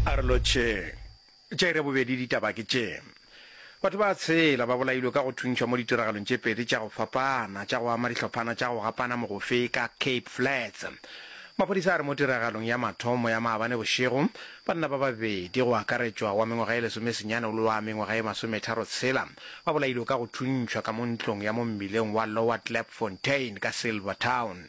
a re lotšheng tše re bobedi ditaba ke tše batho ba tshela ba bolailwe ka go thuntšhwa mo ditiragalong tše pedi tša go fapana tša go ama dihlophana tša go gapana mogofe ka cape flats maphodisa a re mo tiragalong ya mathomo ya maabane bošego banna ba babedi go akaretšwa wa mengwaga e lesomesenyane le wa mengwaga e masometharo tshela ba bolailwe ka go thuntšhwa ka mo ntlong ya mo mmileng wa lower clapfontain ka silver town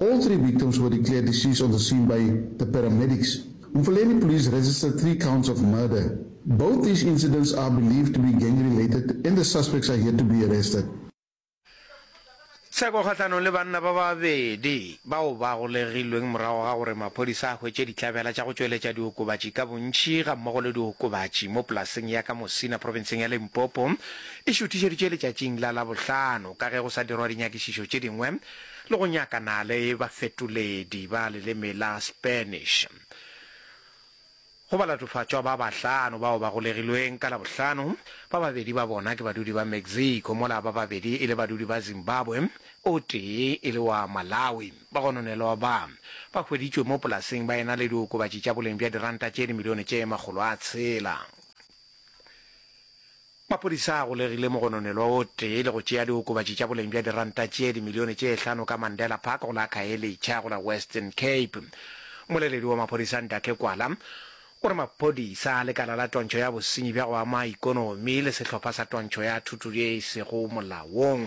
All three victims were declared deceased on the scene by the paramedics. Mfuleni police registered three counts of murder. Both these incidents are believed to be gang related and the suspects are yet to be arrested. Tsheko kgahlanong le banna ba babedi bao ba golegilweng morago ga gore maphodisa a hwetše dihlabela tša go tšweletša diokobatši ka bontši gammogo le diokobatši mo polaseng ya ka Mosina profenseng ya Limpopo e šuthišeditšwe letšatšing la Labohlano ka ge go sa dirwa dinyakišišo tše dingwe le go nyakana le bafetoledi ba leleme la Spanish go balatofatšwa ba bahlano bao ba golegilweng ka Labohlano, ba babedi ba bona ke badudi ba Mexico mola ba babedi e le badudi ba Zimbabwe, o tee e le wa Malawi. Bagononelwa ba, ba hweditšwe mo polaseng ba ena le diokobatši tša boleng bja diranta tše dimilione tše makgolo a tshela. Maphodisa a golegile mogononelwa o tee le go tšea diokobatši tša boleng bja diranta tše dimilione tše hlano ka Mandela Park go la Khayelitsha go la Western Cape. Mmoleledi wa maphodisa Ndake Kwala o re maphodisa a lekala la twantšho ya bosenyi bja go ama ikonomi le sehlopha sa twantšho ya thuto ye e sego molaong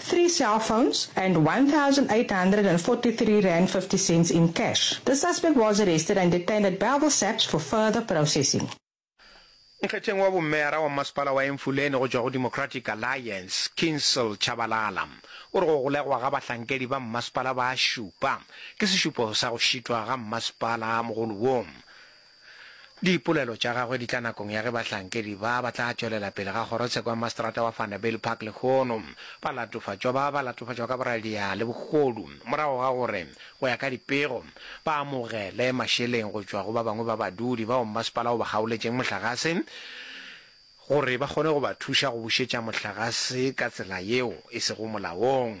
three cell phones and R1,843.50 in cash. The suspect was arrested and detained at Bellville SAPS for further processing. Mokgetheng wa bommeara wa mmasepala wa Emfuleni go tšwa go Democratic Alliance, Kinsel Tshabalala o re go golegwa ga bahlankedi ba mmasepala ba šupa ke sešupo sa go šitwa ga mmasepala mogolo wo. Dipolelo tša gagwe di tla nakong ya ge bahlankedi ba ba tla tšwelela pele ga kgorotsheko ya Maseterata wa Vanderbijl Park lehono ba latofatšwa ba ba latofatšwa ka boradia le bogodu morago ga gore, go ya ka dipego, ba amogele mašeleng go tšwa go ba bangwe ba badudi bao mmasepala o ba kgaoletšeng mohlagase gore ba kgone go ba thuša go bušetša mohlagase ka tsela yeo e sego molaong.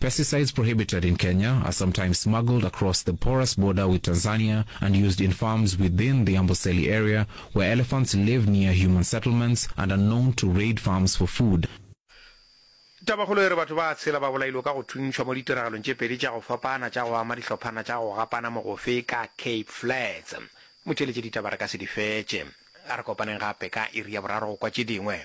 Pesticides prohibited in Kenya are sometimes smuggled across the porous border with Tanzania and used in farms within the Amboseli area where elephants live near human settlements and are known to raid farms for food. Tabakgolo e re batho ba tshela ba bolailwe ka go thuntšhwa mo ditiragalong tše pedi tša go fapana tša go ama dihlophana tša go gapana mogofe ka Cape Flats. Motheeletše ditaba re ka se di fetše. A re kopaneng gape ka iri ya boraro go kwa tše dingwe.